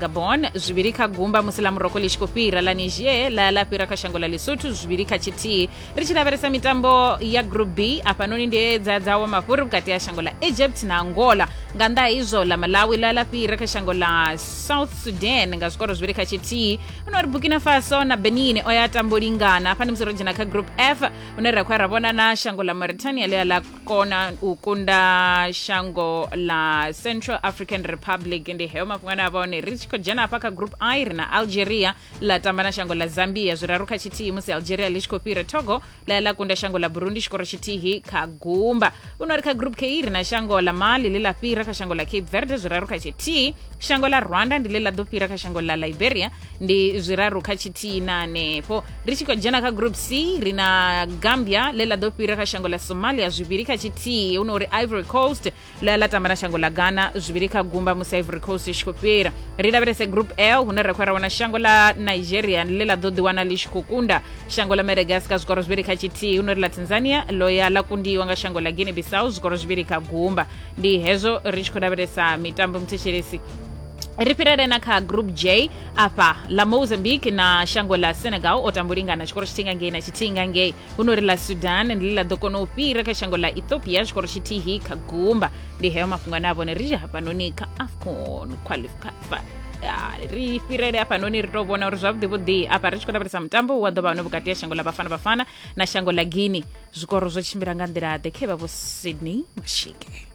gabon zwivhili kha gumba musi ḽa moroko ḽi tshi khou fhira ḽa niger ḽa ḽa fhira kha shango ḽa lesotho zwivhili kha tshithihi ri tshi lavhelesa mitambo ya group b afhanoni ndi ye dza dzawo mafhuri vhukati ha shango ḽa egypt na angola nga nnḓa ha izwo ḽa malawi ḽa ḽa fhira kha shango ḽa south sudan nga zwikoro zwivhili kha tshithihi huno ri burkina faso na benin o ya tambo lingana hafha ndi musi ro dzhena kha group f hune ra khou ya ra vhona na shango ḽa mauritania ḽi a ḽa kona u kunda shango ḽa central african republic ndi heyo mafhungo ane a vha one ri tshi khou dzhena hafha kha group i ri na algeria ḽa tamba na shango ḽa zambia zwiraru kha tshithihi musi algeria ḽi tshi khou fhira togo ḽa ya ḽa kunda shango ḽa burundi tshikoro tshithihi kha gumba u no ri kha group k ri na shango ḽa mali ḽi ḽa fhira kha shango ḽa cape verde zwiraru kha tshithihi shango ḽa rwanda ndi ḽe ḽa ḓo fhira kha shango ḽa liberia ndi zwiraru kha tshithihi na hanefho ri tshi khou dzhena kha group c ri na gambia ḽe ḽa ḓo fhira kha shango ḽa somalia zwivhili kha tshithihi hu no uri ivory coast ḽa ḽa tamba na shango ḽa ghana zwivhili kha gumba musi ivory coast i tshi khou fhira ri lavhelese group l hune ra khou ra wana shango ḽa nigeria ḽe ḽa ḓo ḓiwana ḽi tshi khou kunda shango ḽa madagascar zwikoro zwivhili kha tshithihi hu no uri ḽa tanzania ḽo ya ḽa kundiwa nga shango ḽa guinea bissau zwikoro zwivhili kha gumba ndi hezwo ri tshi khou lavhelesa mitambo muthetshelesi ri fhirele na kha group j afha la mozambique na shango la senegal o tambo lingana tshikoro tshithihi nga ngei na tshithihi nga ngei huno ri la sudan ndi ḽi ḽa ḓo kona u fhira kha shango la ethiopia tshikoro tshithihi kha gumba ndi heyo mafhungo ane a vhone ri hafhanoni kha afcon qualificafa ri fhirele hafhanoni ri tou vhona uri zwavhuḓi vhuḓi afha ri tshi khou lavhelesa mutambo wa ḓo vha hone vhukati ha shango la bafana bafana na shango la guinea zwikoro zwo tshimbila nga nḓila ḓe khe vha vho sydney mashike